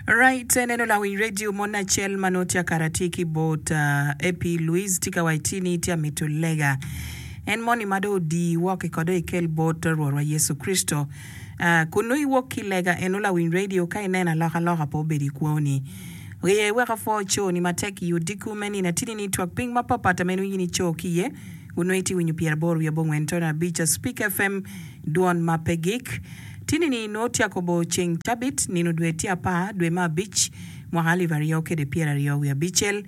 Right, eneno lawiny radio mon acel ma nongo tye kara tye ki bot uh, AP Luis tye ka waco ni tye amito lega en moni ma dong odii woko eko dong ikel bot Rwotwa Yecu Kricito uh, kun nongo iwok ki lega eno lawiny radio ka ineno alokaloka pe obedo i kwoni Ryeye wek apwo coni matek i odiko me nino atini ni twak piny mapatpat ma en winyo ni co ki iye kun nongo itye winyo pyeraboro wiye bongwen tono abica Speak FM Dwon ma pe gik. Tinini nongo tye akobo ceng cabit, nino dwe tye apar dwe me abic, mwaka alip aryo kede pyer aryo wiye abicel.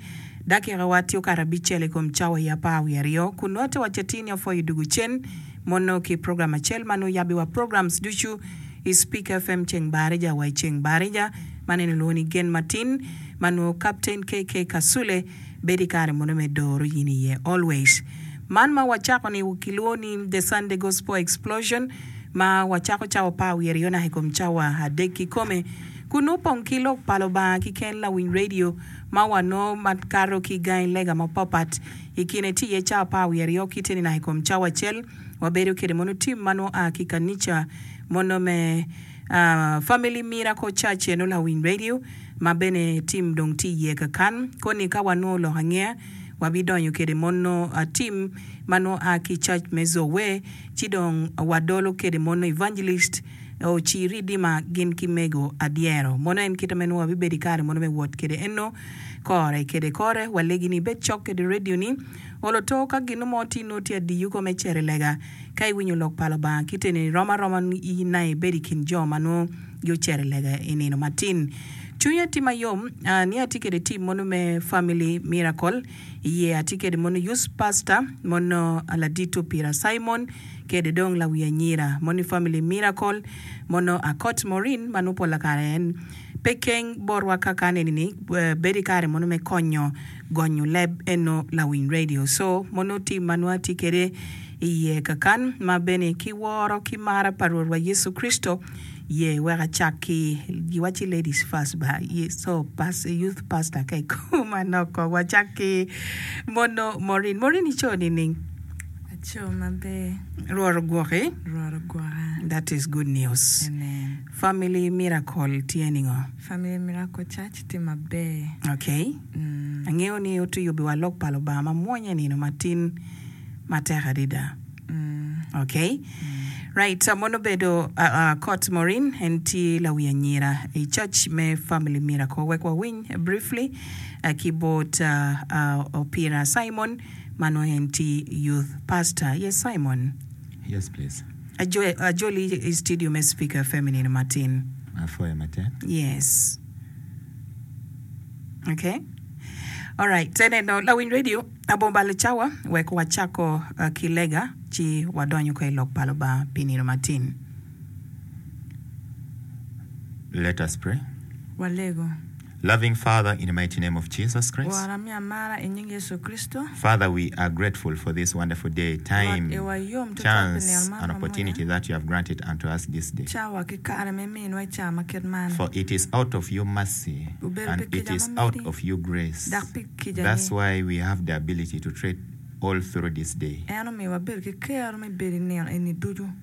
Dakika wa tye okato abicel i kom cawa i apar wiye aryo, kun nongo te wacce tini apwoyo dugu cen mono ki program acel ma nongo yabbi wa programs ducu i Speaker FM ceng Barija wa i ceng Barija. Man eni olwongo ni Gen Matin ma nongo Captain KK Kasule. Bed i kare munu me doro in iye always. Man ma wacako ni kilwongo ni The Sunday Gospel Explosion ma wacako cawa pa wiye ryo naka i kom cawa adek kikome kun nongo opong ki Lok pa Lubanga ki ken lawiny radio ma wanongo ma kato ki gangi lega mapapat i kine tye iye cawa pa wiye ryo kite ni naka i kom cawa acel wabedo kede mono tim ma nongo aa ki kanica mono me Family Miracle Church eno lawiny radio ma bene Tim dong tye iye kakan, koni ka wanongo lok angeya, wabidonyo kede mono Tim ma nongo a ki cac me Zoe, ci dong wadolo kede mono Evangelist Ocir Ridima gin ki mego adyero. Mono en kite ma nongo wabibedo i kare mono me wot kede eno kore kede kore. Walegi ni ibed cok kede radio ni, olo to ka gino mo ti nongo tye adiyu kome i cere lega. Ka iwinyo lok pa Lubanga kite ni, rom aroma i naye bed i kin jo ma nongo. yo cere lega i nino matin. Cwinya tye ma yom ni atye kede tim mono me Family Miracle. Iye atye kede mono Youth Pastor mono Aladit Opira Simon kede dong lawi anyira mono i Family Miracle mono Akot Maureen ma nongo pola kare en pe keng botwa ka ka neni ni bedo i kare mono me konyo gonyo leb eno lawiny radio so mono tim ma nwa atye kede iye kakan ma bene ki woro ki mara pa Rwot wa Yecu Kricito ye wek acak ki giwa ci ladies first ba so pastor youth pastor ka ikobo manok kong wacak ki mono Morin Morin ico nining? Aco maber. Rwot ogwoki. Rwot ogwoka. That is good news. Amen. Family miracle tye ningo? Family Miracle Church tye maber. Okay. Angeyo ni otiyo biwa lok pa Lubanga ma mwony e nino ma tin ma tek adida. Okay. Right, so mono obedo Court Morin en tye lawi anyira i Church me Family Miracle. Wek wawiny briefly ki bot Opira Simon ma nongo en tye Youth Pastor. Yes Simon. Yes please. Ajoli i studio me Speaker FM i nino matin. Apwoyo matek. Yes. Okay. Alright, te neno lawiny radio Abomballo Cawa wek wacako uh, ki lega ci wadonyo ko i lok pa Lubanga pi nino matin. Let us pray. Walego. Loving Father in the mighty name of Jesus Christ. Rwot ami amara i nying Yecu Kricito. Father we are grateful for this wonderful day, time, Rwot iwa yom tutwal pi chance nino man and ma mwonya. opportunity that you have granted unto us this day. Cawa ki kare ma iminwa i caa ma kit man. For it is out of your mercy Obedo and pi it kica is ma out miti, of your grace. dok pi kicani. That's why we have the ability to tread all through this day. En omiyo wabedo ki kero me bedo i nino eni ducu.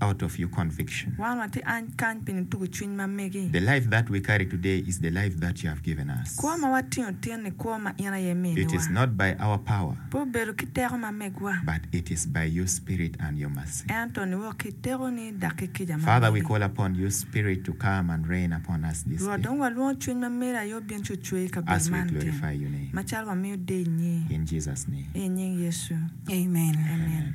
out of your conviction. Wan watye any kany pi nitugo cwiny ma megi. The life that we carry today is the life that you have given us. Kwo ma watingo tin-ni kwo ma in aye iminiwa. It is not by our power. Pe obedo ki teko ma megwa. But it is by your Spirit and your mercy. Ento niwok ki i tekoni dok ki kica ma meri. Father, we call upon your Spirit to come and reign upon us this day. Rwot, dong walwongo cwiny ma meri aye obin ci ocwe i kabedo man tin. As we glorify your name. Macalo wamiyo deyo nyi. In Jesus name. I nying Yecu. Amen. Amen.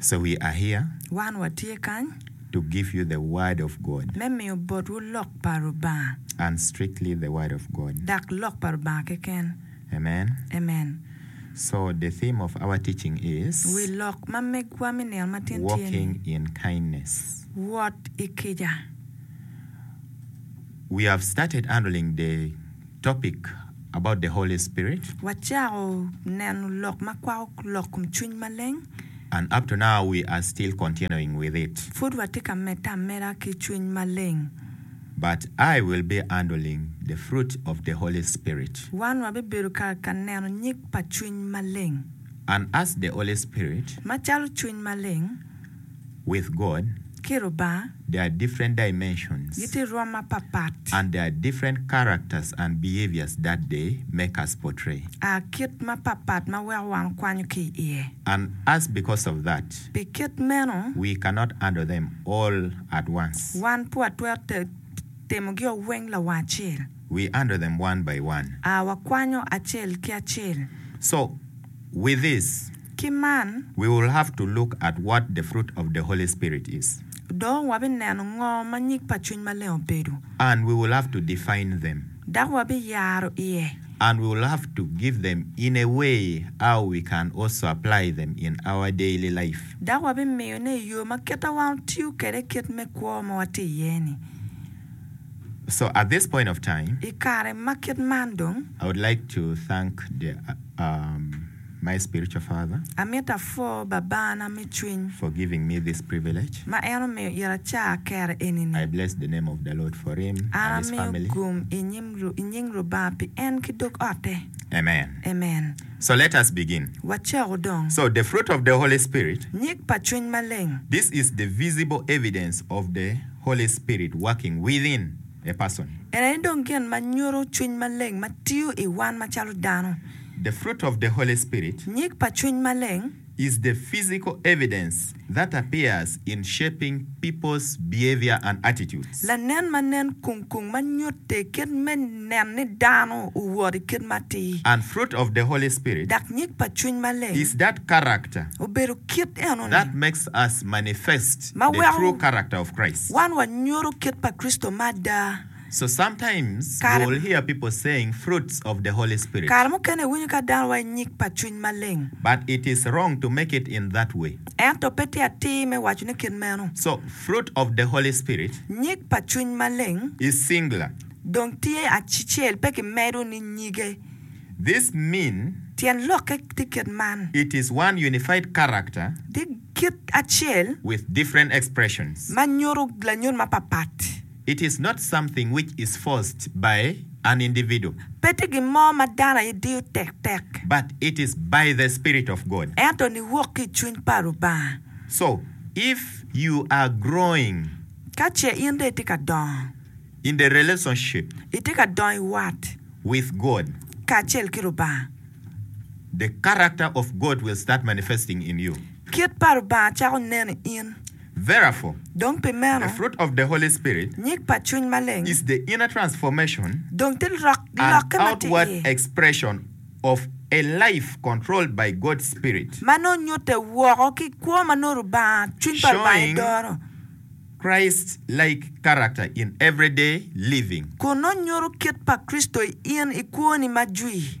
So we are here. Wan watye kany. To give you the word of God. Me miyo botwu lok pa Lubanga. And strictly the word of God. Dak lok pa Lubanga keken. Amen. Amen. So the theme of our teaching is. Wi lok ma megwa me nino matin tye ni. Walking in kindness. Wot i kica. We have started handling the topic about the Holy Spirit. Wacako neno lok ma kwako lok kom Cwiny Maleng. And up to now we are still continuing with it. Pud watye ka medde ameda ki Cwiny Maleng. But I will be handling the fruit of the Holy Spirit. Wan wabibedo ka ka neno nyig pa Cwiny Maleng. And as the Holy Spirit. Macalo Cwiny Maleng. with God, ki Lubanga, there are different dimensions gitye rwom mapatpat, and there are different characters and behaviors that they make us portray. a kit mapatpat ma weko wan okwanyo ki iye. And as because of that, Pi kit meno, we cannot handle them all at once. wan pe watwero timogi o weng lawang acel. We handle them one by one. a wakwanyo acel ki acel. So, with this. Ki man. We will have to look at what the fruit of the Holy Spirit is. Dong wabineno ngo ma nyig pa Cwiny Maleng obedo. And we will have to define them. Dok wabiyaro iye. And we will have to give them in a way how we can also apply them in our daily life. Dok wabimiyone i yo ma kite wan otiyo kede kit me kwo ma watye iye-ni. So at this point of time. I kare ma kit man dong. I would like to thank the. My spiritual father. Amito apwo Babana me cwiny. For giving me this privilege. Ma en omiyo ira acar kero eni-ni. I bless the name of the Lord for him and his family. An amiyo gum i nying Lubanga pi en ki dog ote. Amen. Amen. So let us begin. Wacoku dong. So the fruit of the Holy Spirit. Nyig pa Cwiny Maleng. This is the visible evidence of the Holy Spirit working within a person. En aye dong gin ma nyuto Cwiny Maleng ma tiyo i wan macalo dano. The fruit of the Holy Spirit. Nyig pa Cwiny Maleng. Is the physical evidence that appears in shaping people's behavior and attitudes. Lanen ma nen kung kung ma nyutte kit me nen ni dano owot i kit matir. And fruit of the Holy Spirit. Dok nyig pa Cwiny Maleng. Is that character. Obedo kit eno-ni. That makes us manifest the true character of Christ. Ma weko wan wanyuto kit pa Kricito ma ada. So sometimes Kare. we'll hear people saying fruits of the Holy Spirit. Kare mukene iwinyo ka dano waco nyig pa Cwiny Maleng. But it is wrong to make it in that way. Ento pe tye atir me wacone kit meno. So fruit of the Holy Spirit Nyig pa Cwiny Maleng is singular. dong tye acicel pe ki medo ni nyige. This mean Tyen lokke tye kit man. it is one unified character Tye kit acel with different expressions. ma nyuto lanyut mapapat. It is not something which is forced by an individual. Pe tye gin mo ma dano aye diyo tektek. But it is by the Spirit of God. Ento ni wok ki i Cwiny pa Lubanga. So, if you are growing. Ka ce in dong itye ka dongo. In the relationship. Itye ka dongo i wat. With God. Kacel ki Lubanga. The character of God will start manifesting in you. Kit pa Lubanga cako nen i in. Vera for Dong pi meno, the fruit of the Holy Spirit nyig pa Cwiny Maleng is the inner transformation dong tye lok, and lokke ma tye outward iye, expression of a life controlled by God's Spirit, ma nongo nyutte woko ki kwo ma nongo Lubanga, Cwiny pa Lubanga showing edoro, Christ-like character in everyday living. kun nongo nyuto kit pa Kricito in i kwoni ma jwi.